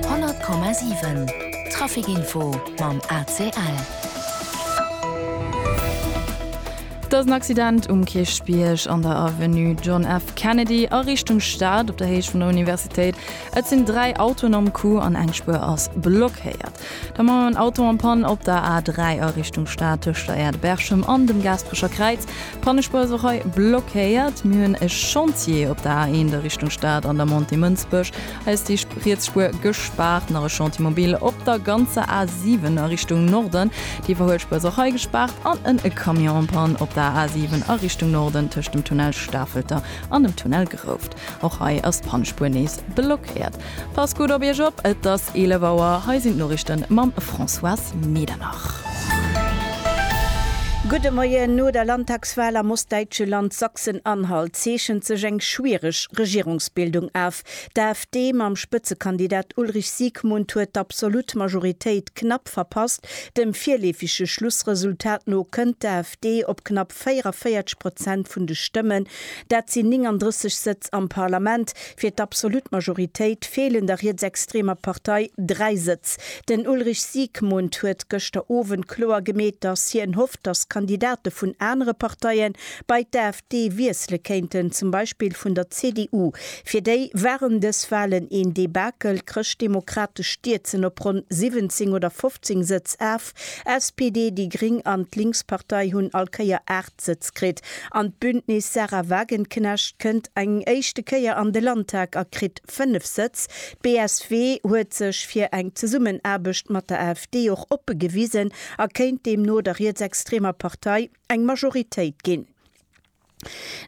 100,7 Trafic Info mam ACL. Et ass en Accident um Kierchbierg an der Avenue John F. Kennedy a Richtung Stad op der Héicht vun der Universitéit. Et sinn dräi Autoen am Coup an eng Spuer ass blockéiert. Da mam en Auto am Pann op der A3 a Richtung Stad tëscht der Aire de Berchem an dem Gaasperecher Kräiz. D'Pannespuerserei blockéiert. Mir hunn e Chantier op der A1 a Richtung Stad an der Montée Mënsbech. Hei ass déi riets Spuer gespaart. Nach e Chantier mobile op der ganzer A7 a Richtung Norden. Déi iwwerhuelt Spuer ass och hei gespaart. An en e Camion en panne op der A7 a Richtung Norden tëscht dem Tunnel Stafelter an dem Tunnel Grouft. Och hei ass d'Pannespuer nees blockéiert. Passt gutt op Iech op, et ass 11 Auer, hei sinn d'Noriichten mam Françoise Medernach. Gudde Moien. No der Landtagswal am ostdäitsche Land Sachsen-Anhalt zeechent sech eng schwiereg Regierungsbildung af. D'AfD mam Spëtzekandidat Ulrich Siegmund huet d'absolut Majoritéit knapp verpasst. Dem virleefege Schlussresultat no kënnt d'AfD op knapp knapp 44 Prozent vun de Stëmmen, dat sinn 39 Sëtz am Parlament, fir d'absolut Majoritéit feelen der rietsextremer Partei dräi Sëtz. Den Ulrich Siegmund huet gëschter Owend kloer gemeet, datt hien hofft, datt Kandidate vun anere Parteie bei d'AfD wiessele kéinten, zum Beispill vun der CDU. Fir déi waren dës Walen een Debakel. D'Chrëschtdemokrate stierzen op ronn 17 oder 15 Sëtz af. SPD, déi Gring an d'Linkspartei hunn all Kéier 8 Sëtz kritt. An d'Bündnis Sarah Wagenknecht kënnt eng éischte Kéier an de Landtag a kritt 5 Sëtz. D'BSW huet sech fir eng Zesummenaarbecht mat der AfD och oppe gewisen a kéint deemno der rietsextremer Partei eng Majoritéit ginn.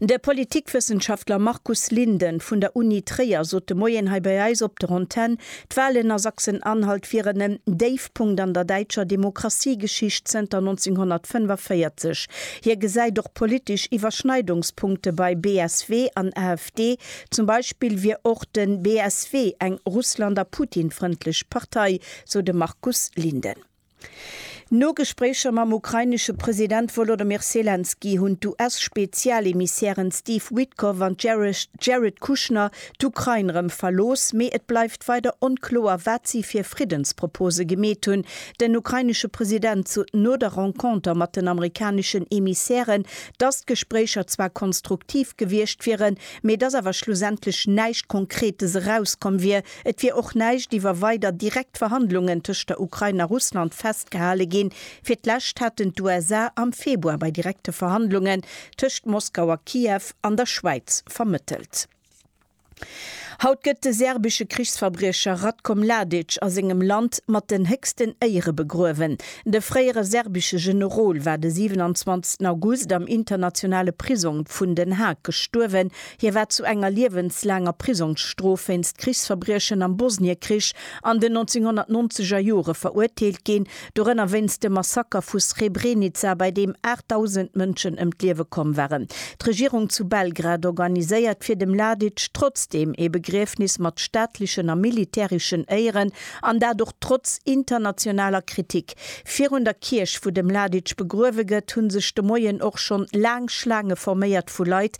De Politikwëssenschaftler Markus Linden vun der Uni Tréier sot de Moien hei bei eis op der Antenn, d'Walen a Sachsen-Anhalt wieren en Déifpunkt an der däitscher Demokratiegeschicht zënter 1945. Hie gesäit och politesch Iwwerschneidungspunkte bei BSW an AfD. Zum Beispill wier och de BSW eng Russland a Putin-frëndlech Partei, sou de Markus Linden. No Gespréicher mam ukrainesche President Wolodymyr Selenskyj hunn d'US-Spezialemissären Steve Witkoff an Jared Kushner d'Ukrain erëm verlooss, mee et bleift weider onkloer, wat si fir Friddenspropose gemeet hunn. Den ukrainesche President sot no der Renconter mat den amerikaneschen Emissären, dass d'Gespréicher zwar konstruktiv gewiescht wieren, mee dass awer schlussendlech näischt Konkretes erauskomm wier. Et wier och näischt iwwer weider direkt Verhandlungen tëscht der Ukrain a Russland festgehale ginn. Fir d'lescht haten d'USA am Februar bei direkte Verhandlungen tëscht Moskau a Kiew an der Schwäiz vermëttelt. Haut gëtt de serbesche Krichsverbriecher Ratko Mladic a sengem Land mat den héchsten Éiere begruewen. De fréiere serbesche Generol war de 27 August am internationale Prisong vun Den Haag gestuerwen, Hie war zu enger liewenslaanger Prisongsstrof wéinst Krichsverbriechen am Bosniekrich an den 1990 er Jore verurteelt ginn, dorënner wéinst dem Massaker vu Srebrenica, bei deem 8.000 Mënschen ëm d'Liewe komm waren. D'Regierung zu Belgrad organiséiert fir de Mladic trotzdeem ee Begriefnis mat staatlechen a militäreschen Éieren, an dat och trotz internationaler Kritik. Virun der Kierch, wou de Mladic begruewe gëtt, hu sech de Moien och schonn laang Schlaange forméiert vu Leit,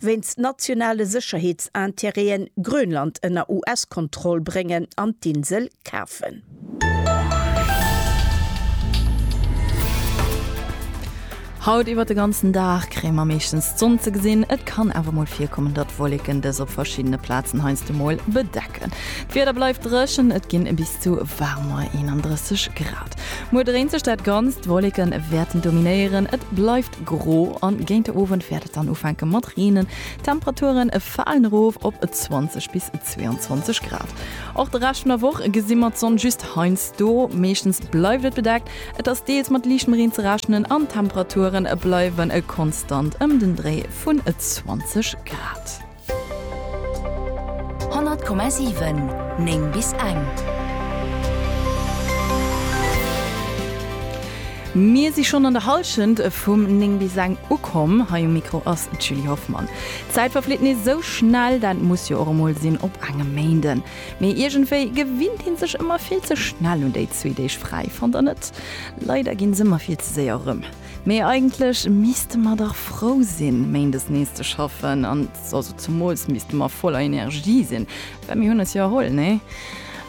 wéinst nationale Sécherheetsintérêten Grönland ënner US-Kontroll bréngen an d'Insel kafen. Haut iwwert de ganzen Dag kréie mer meeschtens d'Sonn ze gesinn, et kann awer mol virkommen, datt Wolleken dës op verschiddene Plazen heiansdo mol bedecken. D'Wieder bleift dréchen, et ginn bis. zu waarmer 31 Grad. Muer dréint sech dat Ganzt, Wolleke wäerten dominéieren, et bleift gro an géint de Owend wäert et dann ufänke mat reenen. D'Temperature falen erof op 20 bis 22 Grad. Och de Rescht vun der Woch gesi mer d'Sonn just heiansdo, meeschtens bleift et bedeckt, et ass deels mat liichtem Reen ze rechnen an d'Temperature bleiwe konstant ëm den Dréi vun 20 Grad. 100,7 9 bis eng. Mir si schonn an der Hallschent vum 9 bis eng ukomm. Hei um Mikro ass d'Julie Hoffmann. D'Zäit verflitt nees esou schnell, dat muss jo och emol sinn op engem Méinden. Mee iergendwéi gewinnt ee sech ëmmer vill ze schnell un déi zwee Deeg fräi, fannt der net? Leider gi se ëmmer vill ze séier erëm. Mee eigentlech misste mer dach frou sinn, Méindes nees ze schaffen. An also zemools misste mer voller Energie sinn, well mir hunn eis jo erholl, nee?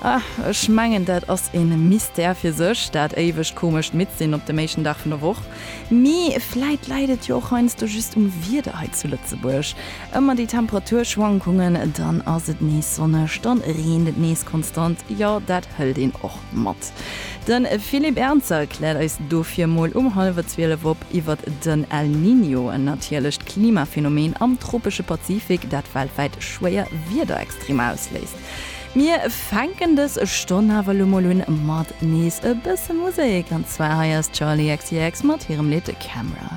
Ah, ech mengen, dat ass e Mystère fir sech, dat éiwegt komescht Midd-Sinn op dem éischten Dag vun der Woch. Mee vläit läit et jo och heiansdo just um Wieder hei zu Lëtzebuerg. Ëmmer déi Temperaturschwankungen, dann ass et nees sonneg, dann reent et nees konstant. Jo, dat hëlt een och. Mat. De Philippe Ernzer kläert eis dofir mol um hallwer 12 op iwwert den El Niño, en natierlecht Klimaphänomen am tropesche Pazifik, dat weltwäit schwéier Wiederextremer ausléist. Mir fänken dës Stonn awer elo mol un mat nees e bësse Musek, an zwar hei ass Charli XCX mat hirem Lidd Camera.